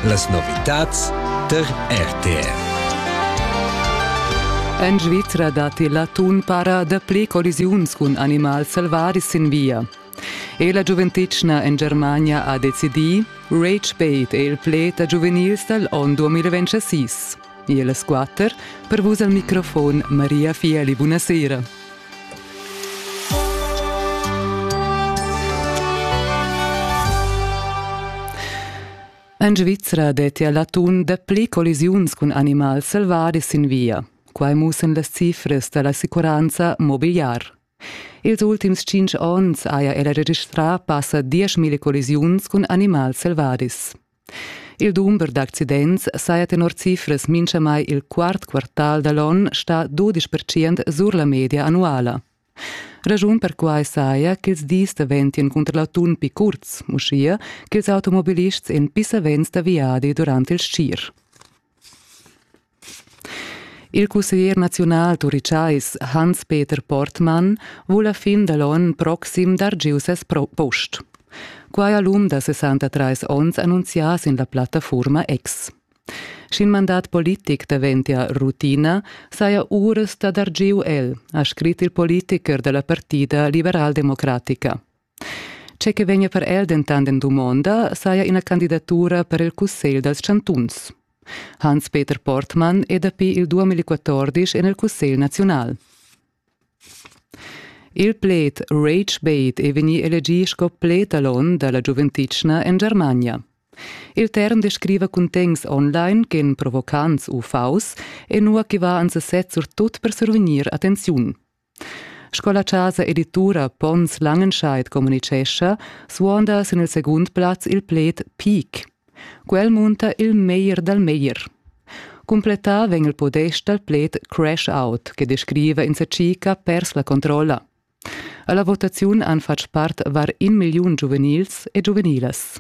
Las novitads tar RTR. En Svizra datti l'atun para dapli collisiuns cun animals selvaris sin via. E la giuventetgna en Germania ha decidì, Rage Bait è il pled da giuvenils dal onn 2026. El squatter per vus al microfon Maria Fieli. Buonasera. En Svizzera detti a l'atun dapli collisiuns cun animals selvadis sin via. Quai mussen las cifras da l'assicuranza mobiliar. Ils ultims cinc onns haja ella registrà passa 10.000 collisiuns cun animals selvadis. Il dumber d'accidents saja tenor cifras minchamai il quart quartal da l'on stà 12% sur la media annuala. Raschun per quai saja ch'ils dis daventien cunter l'atun pi curts, uschia ch'ils automobilists en pissavents da viadi durant il schir. Il cusseglier naziunal turichais Hans-Peter Portmann vul a fin da l'onn proxim dar giu ses post. Quai ha l'um da 63 onns annunzià sin la plattafurma X. Sch'in mandat politic daventia rutina, saja uras da dar giu el, ha scrit il politicher da la partida liberaldemocratica. Tge che vegnia per el dentant en dumonda saja ina candidatura per il Cussegl dals chantuns. Hans-Peter Portmann è dapi il 2014 en il Cussegl naziunal. Il pled Rage-Bait è vegnì elegì sco pletalon da la giuventitschna en Germania. Il term descriva cuntegns online ch'en provocants u faus e nua che va ans sez surtut per survegnir attenziun. Sco la chasa editura Pons Langenscheid communitgescha, suonda sin il segund plaz il pled peak. Quel munta il meglier dal meglier. Cumplettà vegn il podest dal pled crash out, che descriva in cica pers la controlla. Alla votaziun han fatg part var in milliun giuvenils e giuvenilas.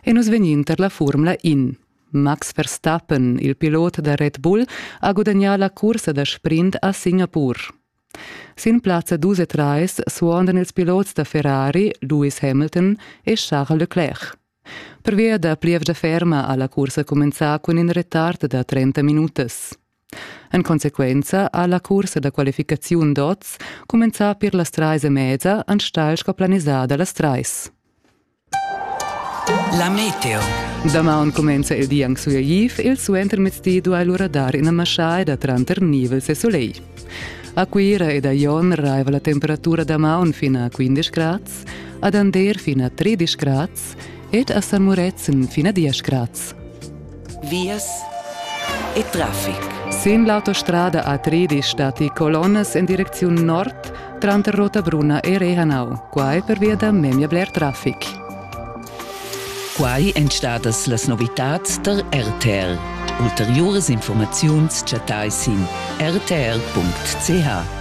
E nus vegnin per la formula in. Max Verstappen, il pilot da Red Bull, ha gudagnà la cursa da sprint a Singapur. Sin plazza dus e trais suondan ils pilots da Ferrari Lewis Hamilton e Charles Leclerc. Pervia da plievgia ferma ha la cursa cumenzà cun in retard da 30 minutas. En consequenza ha la cursa da qualificaziun d'oz cumenzà pir las trais e mezza enstagl sco planisada las trais. La meteo. Damaun cumenza il di anc sueiv, il suentermezdi duai lura dar ina maschaida tranter nivels e solegl. A Cuira ed a Jon raiva la temperatura damaun fin a 15 grads, ad Ander fin a 13 grads ed a San Murezzan fin a 10 grads. vias e traffic. Sin l'autostrada A3 stati colonnas en direcziun nord tranter Rotabrunna e Rehanau, quai pervia da memia bler traffic. Quai èn stadas las novitads tar RTL. Ulteriuras informaziuns chattai sin rtl.ch.